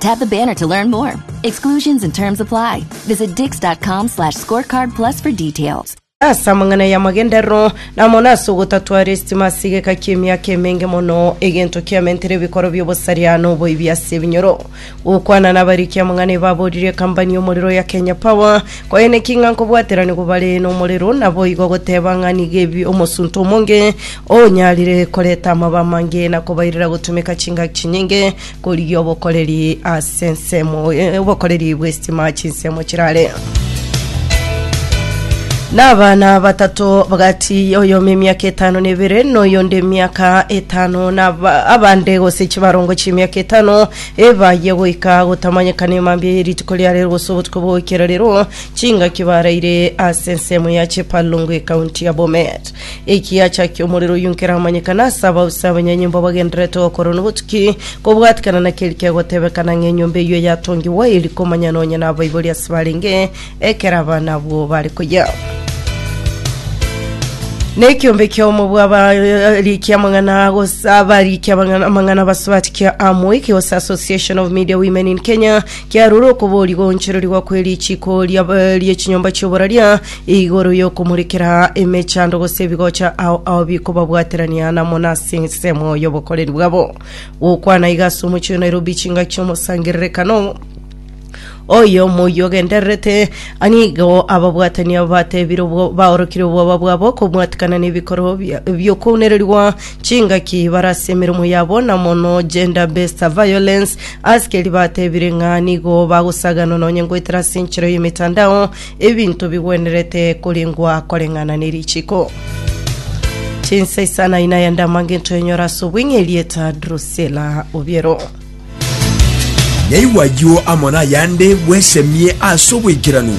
Tap the banner to learn more. Exclusions and terms apply. Visit dix.com slash scorecard plus for details. ase amang'ana y'amagenderero na mono ase ogotatwara esitima ase egeka ki'emiaka emenge mono egento kiamentere ebikoro bi'obosaria na oboibi ase ebinyoro gokwana nabariki amang'ana ebaborire ekambani y'omorero ya kenya power koye neki ng'a nkobwateranigwa bare n'omorero naboigo goteba ng'a nigo ebi omosunte omonge onyarire koreta amaba amange na kobairera gotumeka chingaki chinyinge korigia obokoreri ase ensemo eh, obokoreri bw'estima chinsemo chirare n'abana batato bagati oyomo emiaka etano na ebere noyonde emiaka etano naba- abande gose chibarongo chi'emiaka etano ebaye goika gotamanyekana emambia ye rituko ria rero gose obotuko bwa goikera rero chingaki baraire ase ensemo ya chepalongo ekaunti ya bomet Ekiacha ki'omorero oyio nkeramanyekane ase abausi abanyanyomba abagendererete gokora na obotuki, kobwatikana na keri kegotebekana ng'a enyomba eyio eyatongigwa eri komanya nonya nabaibori ase barenge ekero abana abwo bare koyia. Nekiombe kiomo bwa abarikia amang'ana gose abarikia abang'ana- amang'ana basubati kia Amwik gose Association of Media Women in Kenya kiarure okoboria goonchererigwa kwe richiiko ria- rie chinyomba chioboraria Igoro y'okomorekera emechando gose ebigocha ao ao bikobabwaterania namo nase ensemo y'obokoreri bwabo. Gokwana iga ase omochie o Nairobi chingaki ch'omosangererekano oyo omoyio ogendererete anigo ababwatania batebire obwo baorokire obwoba bwabo kobwatikana n'ebikorwa bia- bi'okounererigwa chingaki bare ase emeremo yabo na mono gender based violence askeri batebire ng'a nigo bagosaganwa nonye ngoetera ase enchera y'emetandao Ebinto bigwenerete korengwa koreng'ana ne richiko. Chinsa isana ina ya ndama ngento enyora ase obweng'e erieta Drusilla Obiero. Nyaigwa ayio amo nayande bwesemie ase obwaikeranu.